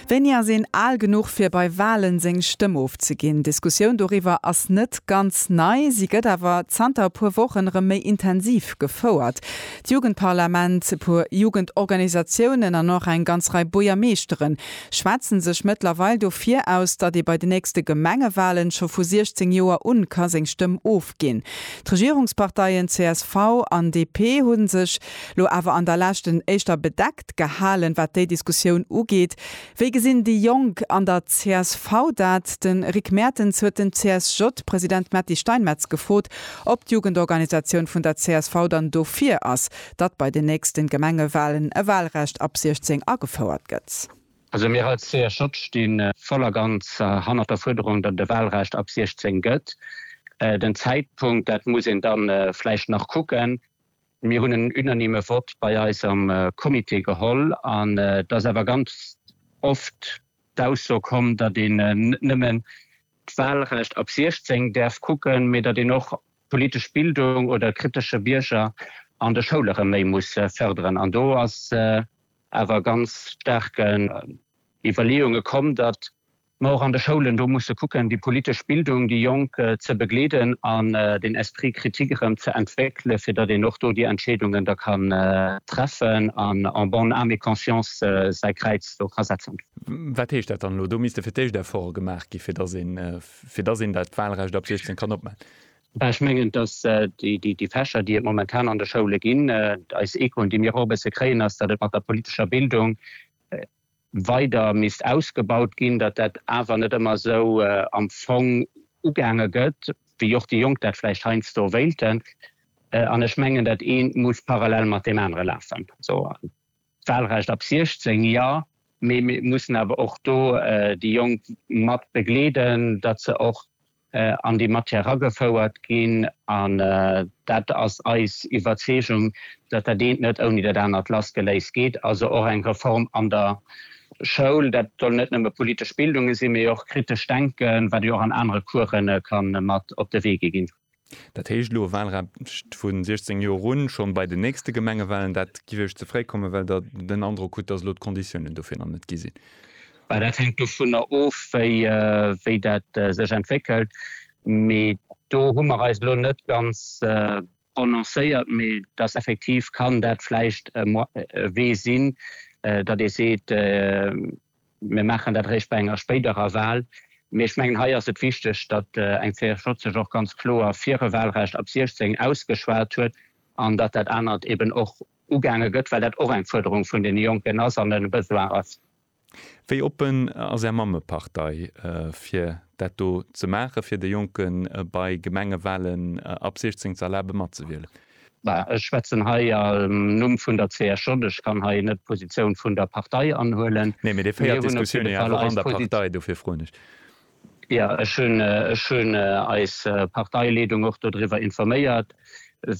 Wéini ass een al genuch fir bei Walen seng Stëmm ofzeginn? D'Diskussioun doriwwer ass net ganz nei, si gëtt awer zanter e puer Wochen erëm méi intensiv gefouert. D'Jugendparlament, e puer Jugendorganisatiounen an och eng ganz Rei Buergermeeschtere schwätzen sech mëttlerweil dofir aus, datt ee bei de nächste Gemengewalen scho vu 16 Joer un ka seng Stëmm ofginn. D'Regierungsparteien csv an DP hu sech Lo awer an der leschten éischter bedeckt gehalen, wat déi Diskussioun ugeet. Wéi gesinn déi Jonk an der csv dat? De Rick Mertens huet den CSJ-President Metty Steinmetz gefrot, ob d'Jugendorganisatioun vun der csv dann dofir ass, datt bei den nächste Gemengewalen e Walrecht ab 16 agefouert gëtt. Also mir als CSJ sti voll a ganz hannert der Fuerderung, datt et e Walrecht ab 16 gëtt. Den Zäitpunkt, dat muss een da vläicht nach kucken. Mir hunn en unanime Vott bei eis am Comité geholl an et ass awer ganz oft d'Ausso komm, datt een net nëmmen d'Wahlrecht ab 16 däerf kucken, mee datt een och d'politesch Bildung oder kritesche Bierger an de Schoule rëm méi muss fërderen. An do ass awer ganz staark Iwwerleeunge komm, datt Ma och an de Schoulen, do musse kucken, déi politesch Bildung, déi Jonk ze begleeden an den Esprit critique erëm ze entwéckelen, fir datt een och do déi Entscheedungen da kann treffen an en bonne âme et conscience säi Kräiz do ka setzen. Wat heescht dat dann elo? Do misste fir d'éischt Efforte gemaach gi fir datt een, fir datt een dat Wahlrecht ab 16 kann opmaachen? Ech mengen, datt déi Fächer, déi et momentan an de Schoule ginn, eis Echoen, déi mir och e bësse kréien, ass, datt et mat der politescher Bildung, weider misst ausgebaut ginn, datt dat awer net ëmmer esou am Fong ugaange gëtt, wéi och déi Jonk dat vläicht heiansdo wéilten. An ech mengen, dat eent muss parallel mat deem anere lafen. D'Wahlrecht ab 16, jo, mee mir mussen awer och do déi Jonk mat begleeden, datt se och an déi Matière eragefouert ginn, an dat ass eis Iwwerzeegung, datt dat eent net ouni dat anert lassgeléist geet, also och eng Reform an der Schoul. Dat soll net nëmme politesch Bildunge sinn, mee och kritescht Denke, wat jo och an anere Course ka mat op de Wee gi ginn. Dat heescht elo e Wahlrecht vu 16 Joer un, schonn bei den nächste Gemengewahlen. Dat géif Iech ze fréi kommen, well Der den Androck hutt, datt elo d'Konditiounen dofir nach net gi sinn? Dat hänkt dovunner of, wéi dat sech entwéckelt. Mee do hu mer eis elo net ganz prononcéiert. Mee et ass effektiv, kann dat vläicht e Wee sinn, datt ee seet, mir maachen dat eréischt bei enger spéiderer Wahl. Mee ech mengen, hei ass et wichteg, datt eng CSJ sech och ganz kloer fir e Wahlrecht ab 16 ausgeschwat huet an datt dat anert eeben och ugaange gëtt, well dat och eng Fuerderung vun deene Jonken ass an e Besoin ass. Wéi oppen ass Är Mammepartei fir dat do ze maachen, fir de Jonke bei Gemengewalen ab 16 ze erlabe matzewielen? Ech schwätzen hei am Numm vun der CSJ. Ech kann hei net d'Positioun vun der Partei anhuelen. Nee, mee Dir féiert d'Diskussioun jo awer och an der Partei, dofir froen ech. Jo, ech hunn, ech hunn eis Parteileedung och dodriwwer informéiert,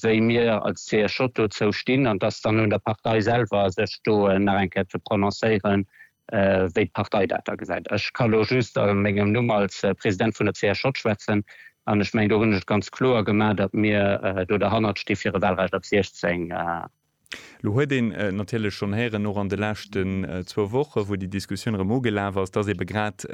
wéi mir als CSJ dozou stinn. An et ass dann un der Partei selwer, sech do nach eng Kéier ze prononcéieren, wéi d'Partei dat da gesäit. Ech ka elo just a mengem Numm als President vun der CSJ schwätzen. An ech mengen, do hunn ech et ganz kloer gemaach, datt mir do derhannert sti fir e Wahlrecht ab 16 Lo huet een natierlech schonn héieren, och an de leschten zwou Wochen, wou déi Diskussioun erëm ugelaf ass, dass ebe grad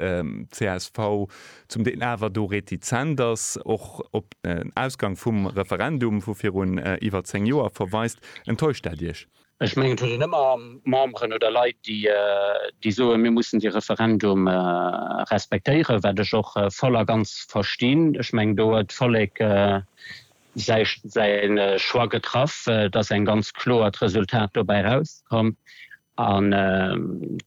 csv zum Deel awer do retizent ass, och op den Ausgang vum Referendum vu virun iwwer zéng Joer verweist. Enttäuscht dat Iech? Ech mengen, et huet een ëmmer Memberen oder Leit, déi soen, mir mussen dee Referendum respektéieren, wat ech och voll a ganz verstinn. Ech mengen, do huet d'Vollek säin Choix getraff, et ass eng ganz kloert Resultat dobäi rauskomm an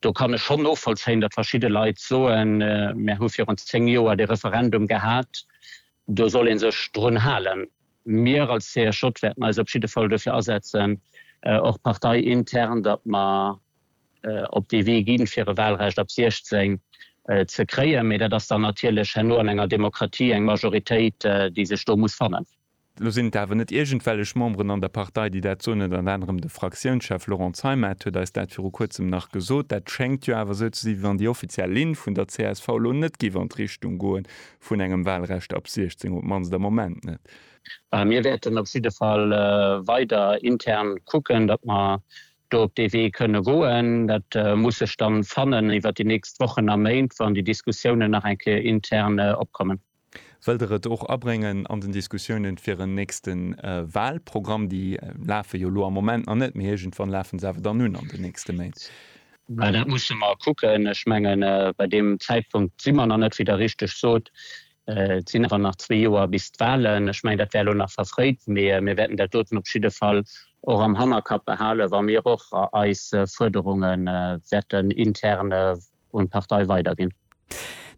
do kann ech schonn novollzéien, datt verschidde Leit soen, mär hu virun zéng Joer dee Referendum gehat, do soll ee sech drun halen. Mir als CSJ wäerten eis op jidde Fall dofir asetzen, och parteiintern, datt mer op dee Wee ginn, fir e Wahlrecht ab 16 ze kréien. Mee dat ass dann natierlech herno an enger Demokratie eng Majoritéit, déi sech do muss fannen. Elo sinn et awer net iergendwellech Memberen an der Partei, déi dat soen. Ënnert anerem de Fraktiounschef Laurent Zeimet huet eis dat viru Kuerzem nach gesot. Dat schéngt jo awer esou ze sinn, wéi wann déi offiziell Linn vun der csv elo net géif an d'Richtung goe vun engem Wahlrecht ab 16, op d'mannst am Moment net. Mir wäerten op jidde Fall weider intern kucken, datt mer do op dee Wee kënne goen, dat muss sech dann fannen iwwert déi nächst Wochen a Méint, wann déi Diskussiounen nach eng Kéier intern opkommen. Wëllt Der et och abréngen an den Diskussiounen fir en nächste Wahlprogramm? Déi lafe jo elo am Moment nach net, mee iergendwann lafen se awer dann un an den nächste Méint. Dat musse mer kucken. Ech mengen, bei deem Zäitpunkt si mer nach net, wéi Der richteg sot. Et sinn awer nach zwee Joer bis d'Wahlen. Ech mengen, dat wär elo nach verfréit, mee mir wäerten dat doten op jidde Fall och am Hannerkapp behalen, wa mir och eis Fuerderunge wäerten intern un d'Partei weiderginn.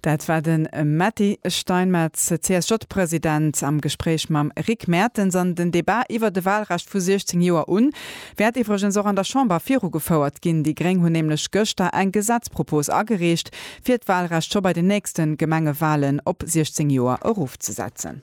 Dat war de Mady Steinmetz, CSJ-President, am Gespréich mam Rick Mertens. An den Debat iwwert e Wahlrecht vu 16 Joer un wäert iwwregens och an der Chamber virugefouert ginn. Déi Gréng hunn nämlech gëschter eng Gesetzpropos agereecht, fir d'Walrecht scho bei den nächste Gemengewalen op 16 Joer erofzesetzen.